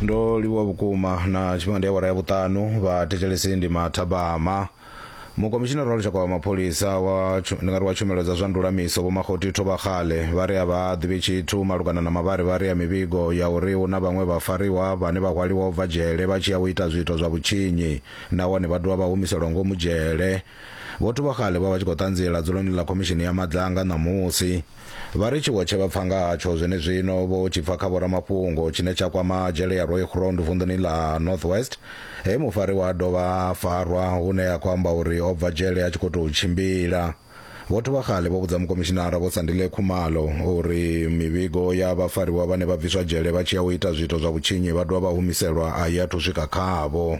ndo livhuwa vhukuma na tshifhinga ndi awara ya vhuṱanu vha thetshelesi ndi mathabama mukomishinara wa lushaka wa mapholisa wa tshu- ndi nga ri wa tshumelo dza zwa ndulamiso vho makhoti thovhakhale vha ri a vha ḓivhi tshithu malugana na mavharivhari ya mivhigo ya uri hu na vhaṅwe vhafariwa vhane vha hwaliwa u bva dzhele vha tshi ya u ita zwiito zwa vhutshinyi nahone vha dovha vha humiselwa ngomu dzhele vho thovhakhale vha vha tshi khou ṱanziela dzuloni ḽa khomishini ya madzanga ṋamusi Vha ri tshiwo tshe vha pfa nga hatsho zwenezwino vho tshi pfa kha vhoramafhungo tshine tsha kwama dzhele ya Rooigrond vunḓuni ḽa North West, he mufariwa a dovha a farwa hune a khou amba uri o bva dzhele a tshi khou tou tshimbila. Vho Thubakgale vho vhudza Mukomishinara Vho Sandile Khumalo uri mivhigo ya vhafariwa vhane vha bviswa dzhele vha tshi ya u ita zwiito zwa vhutshinyi vha dovha vha humiselwa a i athu swika khavho.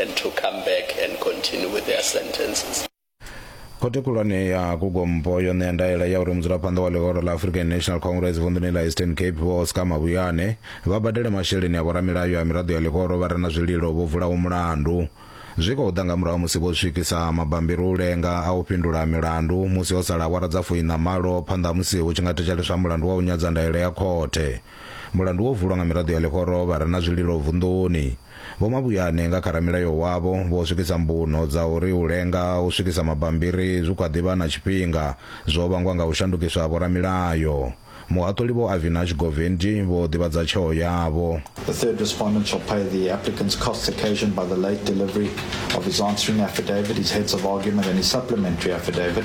and to come back and continue with their sentences. khothe khulwane ya kugompo yo ṋea ndaela ya uri mudzulaphanḓa wa ḽihoro ḽa african national congress vunḓuni ḽa eastern cape vho oscar mabuyane vha badele masheleni a vhoramilayo a miraḓo ya ḽihoro vha re na zwililo vho vulaho mulandu zwi khou ḓa nga murahu musi vho swikisa mabambiri u lenga a u fhindula milandu musi ho sala awara dza fuiṋa malo phanḓa ha musi hu tshi nga thetsheleswa mulandu wa u nyadza ndaela ya khothe Mulandu wo vulwa nga miraḓo ya ḽihoro vha re na zwililo vunḓuni. Vho Mabuyane nga kha ramilayo wavho vho swikisa mbuno dza uri u lenga u swikisa mabambiri zwi kha ḓi vha na tshifhinga zwo vhangwa nga u shandukiswa ha vhoramilayo. Muhaṱuli Vho Avinash Govendji vho ḓivhadza tsheo yavho. The third respondent shall pay the applicant's costs occasioned by the late delivery of his answering affidavit, his heads of argument and his supplementary affidavit.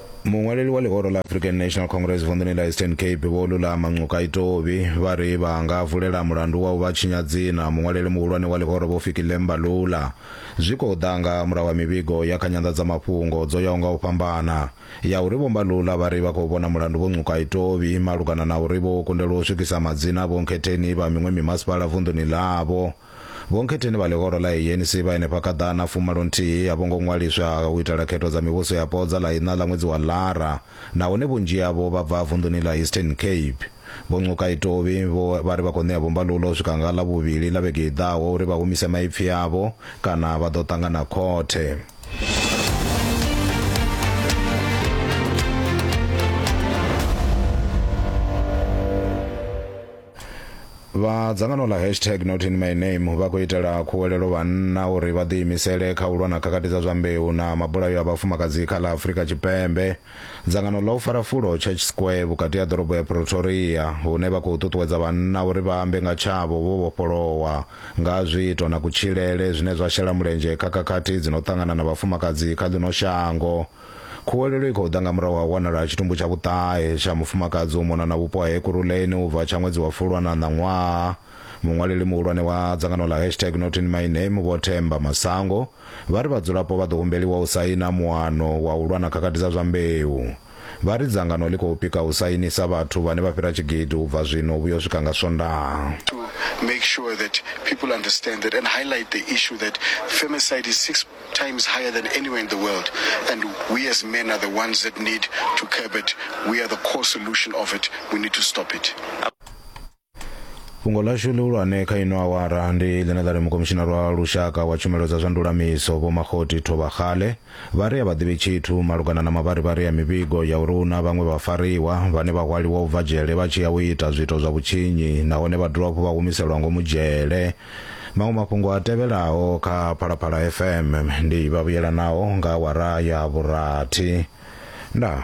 muṅwaleli wa ḽihoro ḽa african national congress vunḓuni ḽa eastern cape vho lulama ncuka itovhi vha ri vha nga vulela mulandu wa u vha tshinya dzina muṅwaleli muhulwane wa ḽihoro vho fiki lemba lula zwi khou ḓa nga murahu ha mivhigo ya kha nyanḓadzamafhungo dzo yaho nga u fhambana ya uri vhomba lula vha ri vha khou vhona mulandu vho ncuka itovhi malugana na uri vho kundelwa u swikisa madzina vhonkhetheni vha miṅwe mimasipala vunḓuni ḽavho Vhonkhetheni vha ḽihoro ḽa ANC vha henefha kha ḓana fumalo nthihi a vho ngo ṅwaliswa u itela khetho dza mivhuso yapo dza ḽa iṋa ḽa ṅwedzi wa Ḽara nahone vhunzhi havho vha bva vunḓuni ḽa Eastern Cape. Vho Ncukai Tovhi vho vha ri vha khou ṋea vho Mbalula u swika nga Ḽavhuvhili ḽa vhege i ḓaho uri vha humise maipfi avho kana vha ḓo ṱangana khothe. vha dzangano ḽa hashtag not in my name vha khou itela khuwelelo vhanna uri vha ḓiimisele kha u lwa na khakhathi dza zwa mbeu na mabulayo a vhafumakadzi kha ḽa afurika tshipembe dzangano ḽa u fara fulo church square vhukati ha ḓorobo ya pretoria hune vha khou ṱuṱuwedza vhanna uri vha ambe nga tshavho vho vhofholowa nga zwiito na kutshilele zwine zwa shela mulenzhe kha khakhathi dzi no ṱangana na vhafumakadzi kha ḽino shango Khuwelelo i khou ḓa nga murahu ha u wanala ha tshitumbu tsha vhuṱahe tsha mufumakadzi u mona na vhupo ha Ekurhuleni u bva tsha ṅwedzi wa Fulwana ha ṋaṅwaha. Muṅwaleli muhulwane wa dzangano ḽa hashtag Not In My Name Vho Themba Masango vha ri vhadzulapo vha ḓo humbeliwa u saina muano wa u lwa na khakhathi dza zwa mbeu. Vha ri dzangano ḽi khou pika u sainisa vhathu vhane vha fhira tshigidi u bva zwino u vhuya u swika nga Swondaha. times higher than anywhere in the world. And we as men are the ones that need to curb it. We are the core solution of it. We need to stop it. fhungo ḽashu ḽihulwane kha ino awara ndi ḽine ḽa ri mukomishinari wa lushaka wa tshumelo dza zwa ndulamiso vho makhoti thovhakgale vha ri a vha ḓivhi tshithu malugana na mavharivhari ya mivhigo ya uri hu na vhaṅwe vhafariwa vhane vha hwaliwa u bva dzhele vha tshi ya u ita zwiito zwa vhutshinyi nahone vha dovha hafhu vha humiselwa ngomu dzhele maṅwe mafhungo a tevhelaho kha phalaphala fm ndi vhavhuyelanaho nga awara ya vhurathi ndaa